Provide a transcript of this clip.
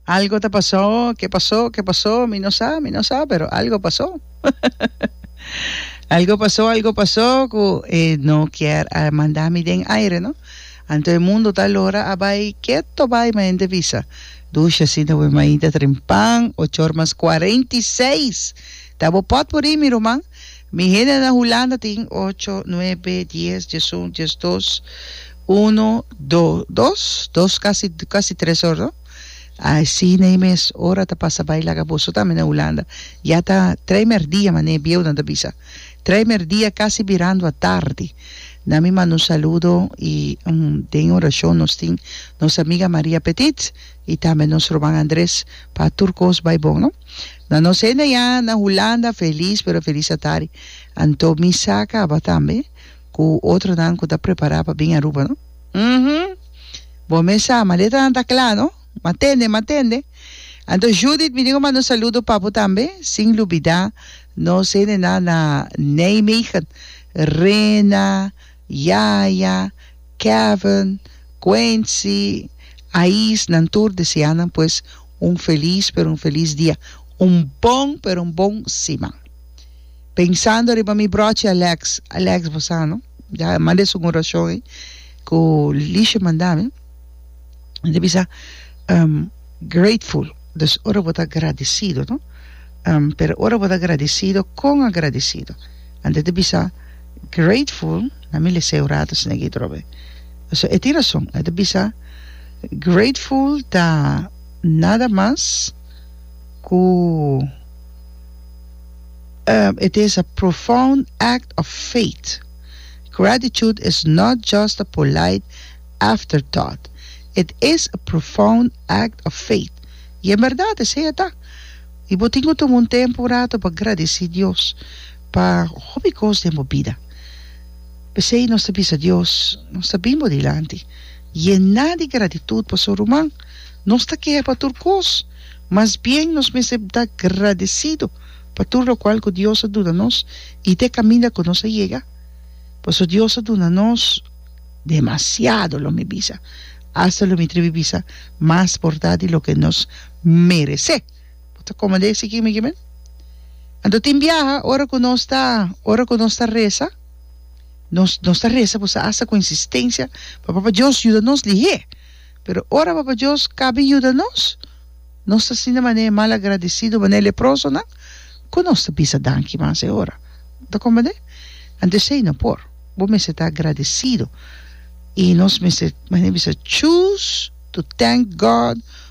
Algo ta pasó, ke pasó, ke pasó, mi no sa, mi no sa, pero algo pasó. algo pasó, algo pasó, ku e no kier a manda mi den aire, no? Anto e mundo ta lora a bai keto bai maente visa. Dusha sinda we mainta tren pan, ochor mas 46. Ta bo pot puri, mi ruman? Mi hende na Hulanda tin ocho, nuebe, dies, diesun, diesdos, uno, do, dos, dos casi, casi tres or no. Así na e mes ora ta pasa bai laga boso tambe na Hulanda. Ya ta tres merdia mane bieunan ta bisa. Tres merdia casi birando a tardi. Na mi manda un saludo y den oracion nos tin nos amiga Maria Petit. Y tambe nos ruman Andres pa tur cos bay bon no. Na nos hende ya na Hulanda feliz pero feliz a tari. Anto mi sa caba tambe cu otronan cu ta prepara pa bin Aruba no. Uhmm bo mes sa maletanan ta cla no. Ma tende ma tende. Anto Judith mi dico manda un saludo pa bo tambe sin lubida nos hendenan na Nijmegen, Rena, Yaya, Kevin, Quincy, Ais nan tur desea nan pues un feliz pero un feliz dia un bon pero un bon siman pensando riba mi brochi Alex Alex bo sa no ya manda esun oracion ey cu Licia manda mi mi ta bisa um grateful dus ora bo ta agradecido no um pero ora bo ta agradecido con agradecido anto ta bisa Grateful, na mi lese un rato esaki atrobe, pasobra e tin rason, e ta bisa, grateful ta nada mas ku e ta esa profound act of faith, gratitude is not just a polite after thought, it is a profound act of faith, i en berdad esei a ta, i bo tin ku tuma un tempu un rato pa gradesi Dios. pa hopi kos den bo bida. P'esei nos ta bisa Dios, Nos ta bin bo dilanti yená di gratitut pa su ruman. Nos ta keha pa tur kos, mas bien nos mester ta gradesidu pa tur lokual ku Dios a duna nos i te kaminda ku nos a yega, paso Dios a duna nos demasiado, lo mi bisa, asta lo mi tribi bisa mas porta di loke nos meresé. Bo ta kome de esaki mi kimin? Anto tin biaha ora ku nos ta ora ku nos ta resa nos nos ta resa por sa asta ku insistensia pa Papa Dios yuda nos lihé. Pero ora Papa Dios kabi yuda nos nos ta sinti manera e malagradisidu manera e leprosonan ku nos ta bisa danki mas e ora. Bo ta kome de? Anto esei no por. Bo mester ta agradisidu i nos mester manera bisa choose to thank God.